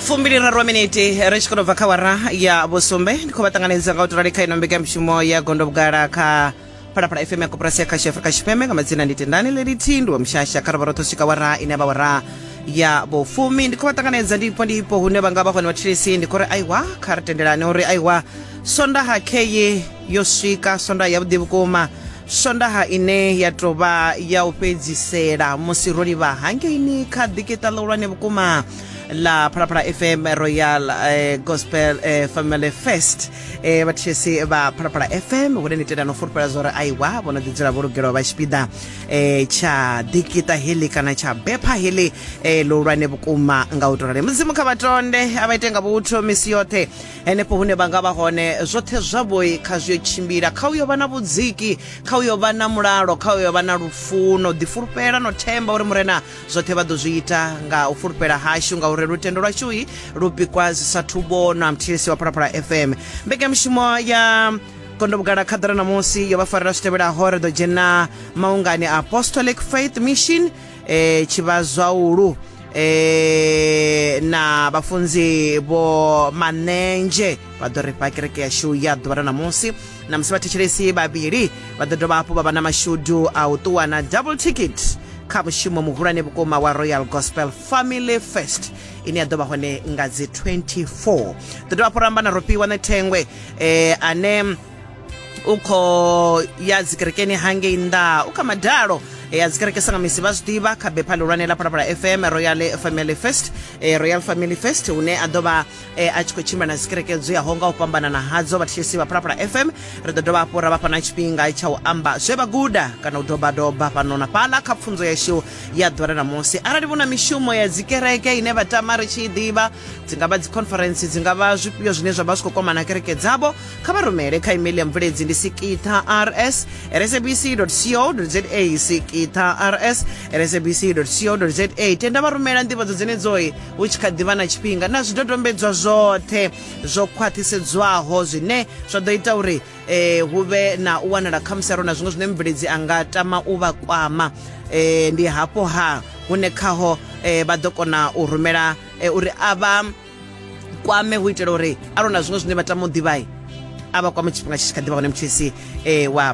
fumbiliraru miniti ri tshi khou bva kha wara ya vhusumbe ndi khou vha ṱanganedza nga u tirali kha ino mbekanyamushumo ya gondo vhugala kha phalaphala fm ya koporasi ya khasho afrika tshipembe nga madzina ndi tendani lelithihi ndi wa mushasha kha rovha roṱhe u swika wara ine ya vha wara ya vhufumi ndi khou vha ṱanganedza ndipo ndipo hune vha nga vha hone vhathilisi ndi khou ri aiwa kha ri tendelane uri aiwa sondaha kheye yo swika sondaha yavhuḓi vhukuma swondaha ine ya tou vha ya u fhedzisela musi ro livha hangeini kha ḓikeṱa ḽihulwane vhukuma la phalaphala fm royal eh, gospel eh, family fest eh, vhathetshelesi vha phalaphala fm hune ni tenda no fulufhela zwa uri aiwa vho no ḓidzula vho lugelwa vha tshipiḓa eh, tsha ḓikeṱa heḽi kana tsha bepha heḽi eh, ḽihulwane vhukuma nga u to rali mudzimu kha vhatonde a vha ite nga vhuthu misi yoṱhe henefho hune vha nga vha hone zwoṱhe zwavhoi kha zwi yo tshimbila kha uyo vha na vhudziki kha uyo vha na mulalo kha uyo vha na lufuno ḓifulufhela no themba uri murena zwoṱhe vha ḓo zwi ita nga u fulufhela hashu ngauri lutendo lwashui lu pikwa zwi sathu vhonwa mthilisi wa phalaphala fm mbekanyamushumo ya kondo vhugala khaḓara ṋamusi yo vha farela zwi tevhelaho ri ḓo dzhena maungani a apostolic faith mission e, tshivhazwaulu e, na vhafunzi vho manenzhe vha ḓo ri fha kereke yashu ya ḓuvha ra ṋamusi na musi vhathetshelesi vhavhili vha ḓo dovha hafhu vha vha na mashudu a u ṱuwa na double ticket kha mushumo muhulwane vhukuma wa royal gospel family first ine ya ḓo vha hone nga dzi 24 ḓo dovha hafhu ramba na rofhiwa na thengwe eh, ane u khou ya dzikerekeni hangei nnḓa u kha madalo e ya dzikereke sa nga misi vha zwi ḓivha kha bepha ḽihulwane ḽa phalaphala fm royal family fest e, royal family fest hune a ḓo vha e, a tshi khou tshimbila na dzikereke dzo yaho nga u fhambanana hadzo vhatshesi vha phalaphala fm ri ḓo dovha hafhu ra vha fha na tshifhinga tsha u amba zwe vha guda kana u dobadoba fhano na fhaḽa kha pfunzo yashu ya ḓora na musi arali vhu na mishumo ya dzikereke ine vha tama ri tshi i ḓivha dzi nga vha dzi conference dzi nga vha zwifhio zwine zwa vha zwi khou kwamana kereke dzavho kha vha rumele kha email ya mvuledzi ndi sikitha rs rsabc co za sikitha rs rsabc co za tenda vha rumela ndivhadzo dzenedzoyi hu tshi kha ḓivha na tshifhinga na zwidodombedzwa zwoṱhe zwo khwaṱhisedzwaho zwine zwa ḓo ita uri eh, hu vhe na u wanala khamusi aro na zwiṅwe zwine mubveledzi a nga tama u vha kwama eh, ndi hafho ha hune khaho eh, vha ḓo kona u rumela eh, uri a vha kwame hu itela uri a lona zwiṅwe zwine vha tama u ḓivhai a vha kwame tshifhinga tshi tshi kha ḓivha hone mthisi um wa